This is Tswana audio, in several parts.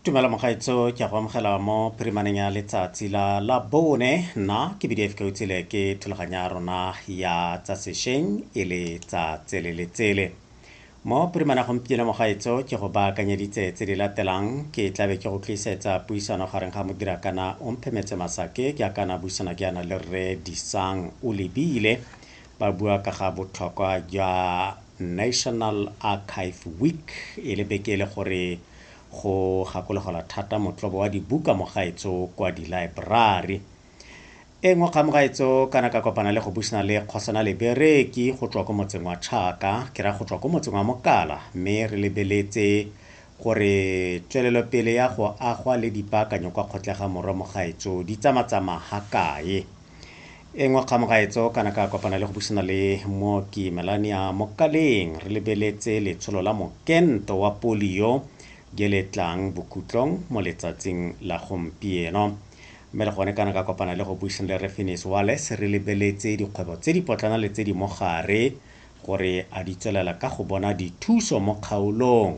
tumela mogaetso ke a go amogela mo phirimaneng ya letsatsi la la bone nna ke bdf ka utsile ke thulaganya rona ya tsa sešweng e le tsa tsele le tsele mo phirimana gompieno mogaetso ke go baakanyeditse tse di latelang ke tlabe ke go tlisetsa puisano gareng ga modira kana o mphemetse masake ke a kana buisana ke yana le rre disang o lebile Ba bua ka ga botlhokwa jwa National Archive Week e le beke e le gore go gakologelwa thata motlobo wa dibuka mo gaetso kwa dilaeborari. E nngwe kgang mo gaetso kana ka kopana le go buisana le Kgosana Lebereki go tswa ko motseng wa Tšhaka, ke ra go tswa ko motseng wa Mokala, mme re lebeletse gore tswelelopele ya go agwa le dipaakanyo kwa Kgotlegamorwa mo gaetso di tsamatsama ha kae. e ngwe kgang gaetso kana ka kopana le go busana le mooki melania mokaleng re lebeletse letsholo la mokento wa polio je le tlang bokhutlong mo letsatsing la gompieno mme le gone kana ka kopana le go buisana le refinis wales re lebeletse dikgwebo tse di potlana le tse di mogare gore a di tswelela ka go bona dithuso mo kgaolong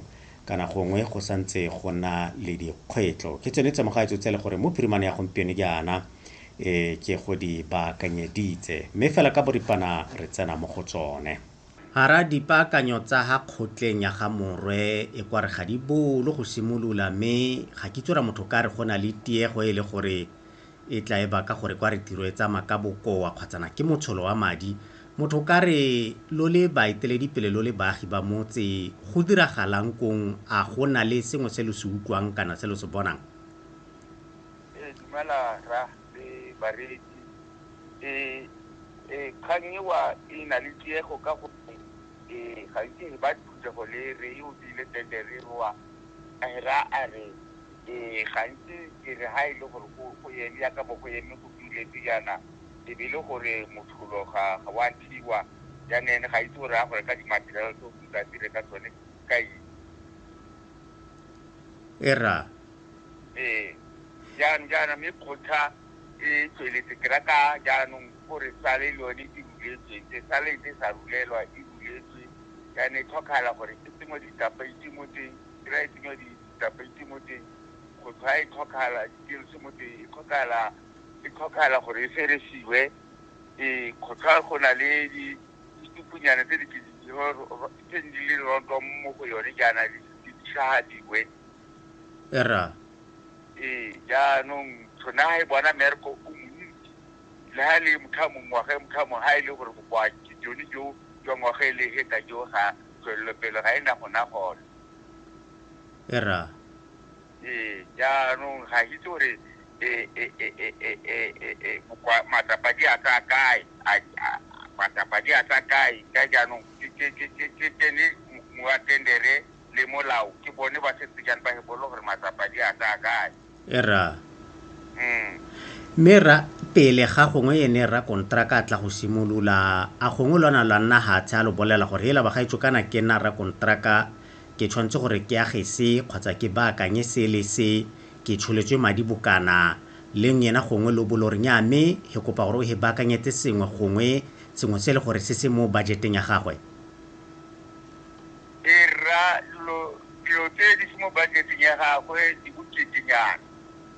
kana gongwe go santse go na le dikgwetlo ke tsone tse mogaetso tse le gore mo phirimane ya gompieno jaana e ke go di baakanyeditse, mme fela ka boripana re tsena mo go tsone. A ra dipaakanyo tsa ga kgotleng ya ga Morwe e kwa re ga di bolo go simolola mme ga kitso ra motho ka re go na le tiego e le gore e tla e baka gore kwa re tiro e tsamaya ka bokoa kgwatsana ke motsholo wa madi motho ka re lo le baeteledipele lo le baagi ba motse go diragalang kong a go na le sengwe se lo se utlwang kana se lo se bonang Ee, dumela rra le bareetsi. Ee, ee, kgang ewa e na le tiego ka gore ee, gantsi re ba phuthego le re e obile tete re wa rra a re ee, gantsi ke re ha e le gore go go eme yaka bo go eme go duletse jaana e be e le gore motlholo ga ga wa thiwa jaana ene ga itse gore a gore ka di-material tse o tla dire ka tsone ka eng. E rra. Ee, jaanong jaana mme kgotla e tsweletse, ke rata jaanong gore sale le yone e ruletswe, se sale ntse sa rulelwa, e ruletswe, jaanong e tlhokagala gore e tsenngwe ditapeiti mo teng, ke ra e tsenngwa ditapeiti mo teng, kgotla e tlhokagala, ditielse mo teng, e tlhokagala, e tlhokagala gore e feresiwe, ee, kgotla go na le di ditupunyana tse di ke di tse di leng rontwa mo go yone jaana di tlhagadiwe. erra ee jaanong tshone ga e bona merko o montsi le ga e le motho a mongwe ngwaga e motho a mongwe ga e le gore bokoa jone jo jwa ngwaga e le heta jo ga tswelelopele ga e na gona gone erra ee jaanong ga itse gore matsapa di a tsa kae matsapa di a tsa kae ka jaanong ke tsene moatendere le molao ke bone ba setse jang ba hebolo gore matsapa di a ka kae e ra mm. mme ra pele ga gongwe ene ra kontraka a tla go simolola a gongwe lwana lwa nna hatshe a lo bolela gore hela bagaetso kana ke nna ra kontraka ke tshwanetse gore ke age se kgotsa ke baakanye se le se ke tsholetswe madi bokana leng yena gongwe lo bolo re nya mme he kopa gore o he baakanyetse sengwe gongwe sengwe se e le gore se se mo budgeteng ya gagwe dira dilo dilo tse di se mo budget-eng ya gagwe di boketenyana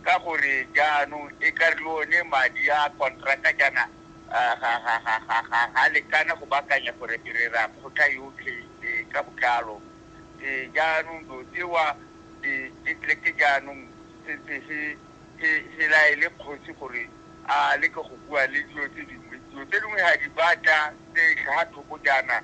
ka gore jaanong e ka re le one madi a kontraka jaana ga lekana go baakanya gore ke rera kgotha yotlhe ka botlalo jaanong dilo tsewa ke tle ke jaanong sentse se se laele kgosi gore a leke go bua le dilo tse dingwe dilo tse dingwe ga di batla tse tlhaga thoko jaana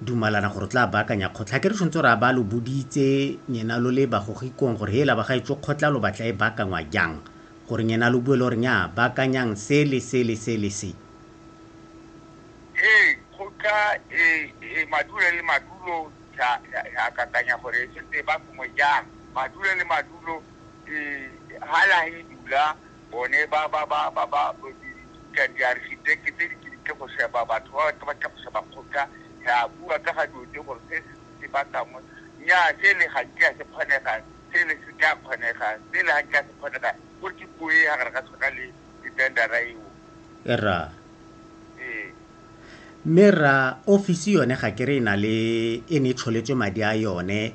dumalana gore tla baakanya kgotla ke re tshwanetse gore a ba lo boditse nyena lo le bagogikong gore hela ba gaetsho kgotla lo batla e baakangwa jang gore nyena lo bue le gore nya baakanyang se le se le se le se ee kgotla e e madulo le madulo ya ya kakanya gore e setse ba kongwe jang madulo le madulo e hala e dula bone ba ba ba ba ba ka di architect tse di ke go sheba batho ba ba ka go sheba kgotla ya bua ka ga dilo tse gore se se ba kangwe nya se le ga ke se kgonega se le se ka kgonega se le ga ke se kgonega go ke puo e ga ga tshwana le di tender ra eo era mme ra ofisi yone ga ke re e na le e ne e tsholetswe madi a yone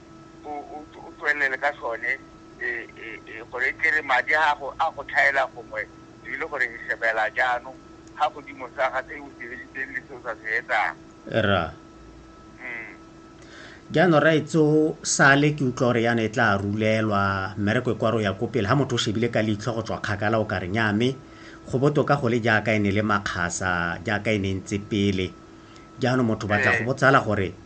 o tswelele ka sone gore e tlere madi a gago a go tlhaela gongwe e le gore e shebela jaanong ga godimo sa ga se o se editseng le se o sa se etsang ra mm. jaanong raetso sale ke utlwa gore yana e tla rulelwa mmereko e kwa ro ya ko pele ga motho o shebile ka leitlho go tswa kgakala o ka re nyame go botoka go le jaaka e ne le makgasa jaaka e ne ntse pele jaanong motho batla go botsala gore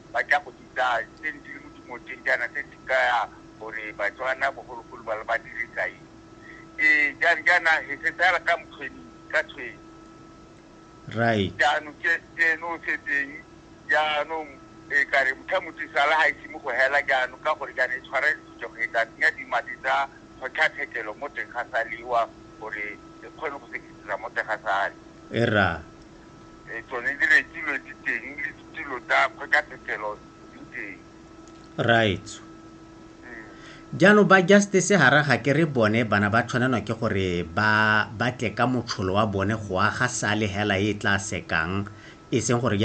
ba tla go bitsa tse ne di le mo dimoteng jaana tse di kaya gore Batswana bogologolo ba ba dirisa eng ee jang jaana he se tsala ka mokgweni ka tshweng right jaanong ke tseno se teng jaanong e ka re motho motho sala ga ise mo go hela jaanong ka gore jaana e tshwara ditso go etsa tsenya dimadi tsa kgotlatshekelo mo teng ga saliwa gore e kgone go sekisisa mo teng ga sale e ra eh, tsone di rekilwe di teng le ditilo tsa kgwekathekelo di teng right mm. jaanong ba justice gara ga ke re bone bana ba tshwanelwa ke gore ba batle ka motsholo wa bone go aga sale hela e tla sekang e seng gore